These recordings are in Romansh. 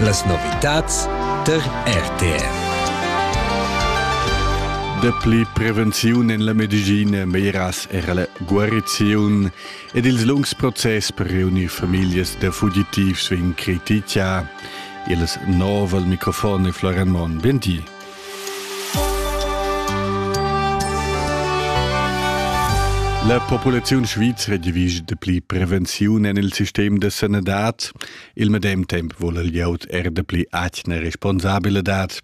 Las novitads tar RTR. Dapli prevenziun en la medicina, meglieras era la guariziun ed ils lungs process per reunir famiglias da fugitivs vegn critichà. Il nov al microfon è Florian Monn. Venti. La populaziun svizra divisa dapli prevenziun en il sistem da sanadad. Il medem temp vul il glieud er dapli atgna responsabilitad.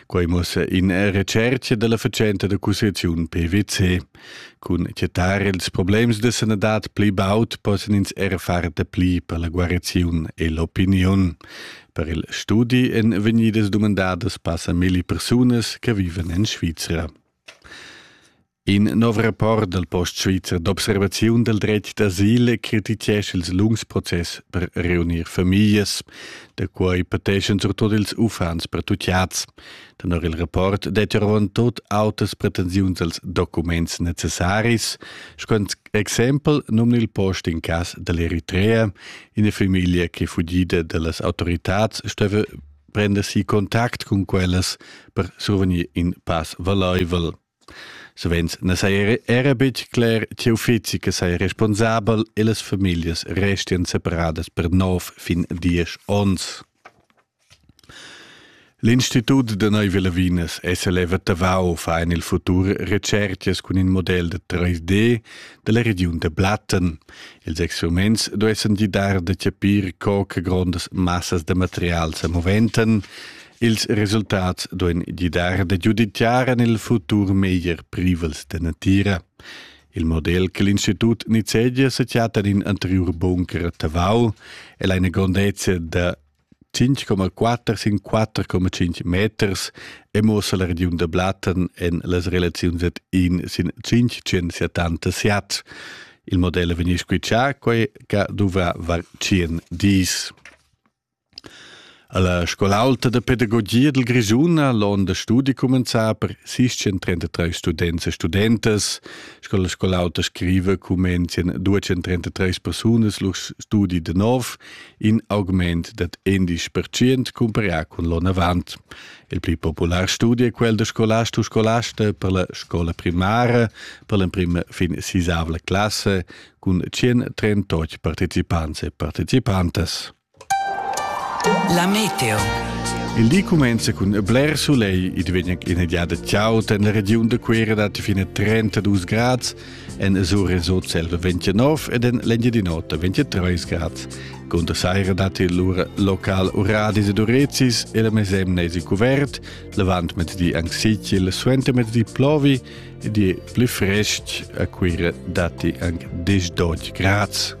Quai mussa in recerca della fatschenta da cussaziun PwC. Cun chetar ils problems da sanadad pli baud possan ins er far dapli per la guariziun e l'opiniun. Per il studi èn vegnidas dumandadas passa milli persunas che viven en Svizra. In nov rapport dal Post Svizzer d'observaziun dal dretg d'asil crititgescha ils lungs process per reunir famiglas, da quai pateschan surtut ils uffants pertutgads. Tenor il rapport dettia avon tut autas pretensiuns als documents necessaris. Sco exempel numna il post in cas dall'Eritrea ina famiglia che fugida dallas autoritads steva prender si contact cun quellas per survegnir in pass valeuvel. Savens na saja era betg cler tge uffizi che saja responsabel e las famiglias restian separadas per nov fin diesch onns. L'Institut da Neuve Lavinas SLF a Tavau fa en il futur retschertgas cun in model da 3D da la regiun da Blatten. Ils experiments duessan gidar da chapir co che grondas massas da material sa moventan Ils resultats duain gidar da giuditgar en il futur meglier privels da natira. Il model che l'Institut nizzegia se chatta in anterior bunker Tavau è la grandezza da 5,4 sin 4,5 meters e muossa la regiun da Blatten en las relaziuns ad in sin 570 siat. Il model vegni squitschà quai che dovrà var 100 dis. Alla scola aulta da pedagogia dil Grischun ha l'onn da studi cumenzà per 633 students e studentas. Sco la scola auta scriva cumenzien 233 persunas lur studi da nov, in augment dad 11% cumparià cun l'onn avant. Il pli popular studi è quel da scolast u scolasta per la scola primara per l'emprima fin sisavla classe cun 138 partecipants e participantas. La meteo. Il di cumenza cun bler solegl, id vegn ina giada chaud en la regiun da Cuera dat fine 32 grads, en Azur en Sotselva 29 ed en l'Engiadin'Ota 23 grads. Conta saira dat il lura local Uradis ed Urezis e la mesemna es il cuvert, l'avant mettedi anche sicil, suenter mettedi plovi ed è pli fresc a Cuera datti anche 10-12 grads.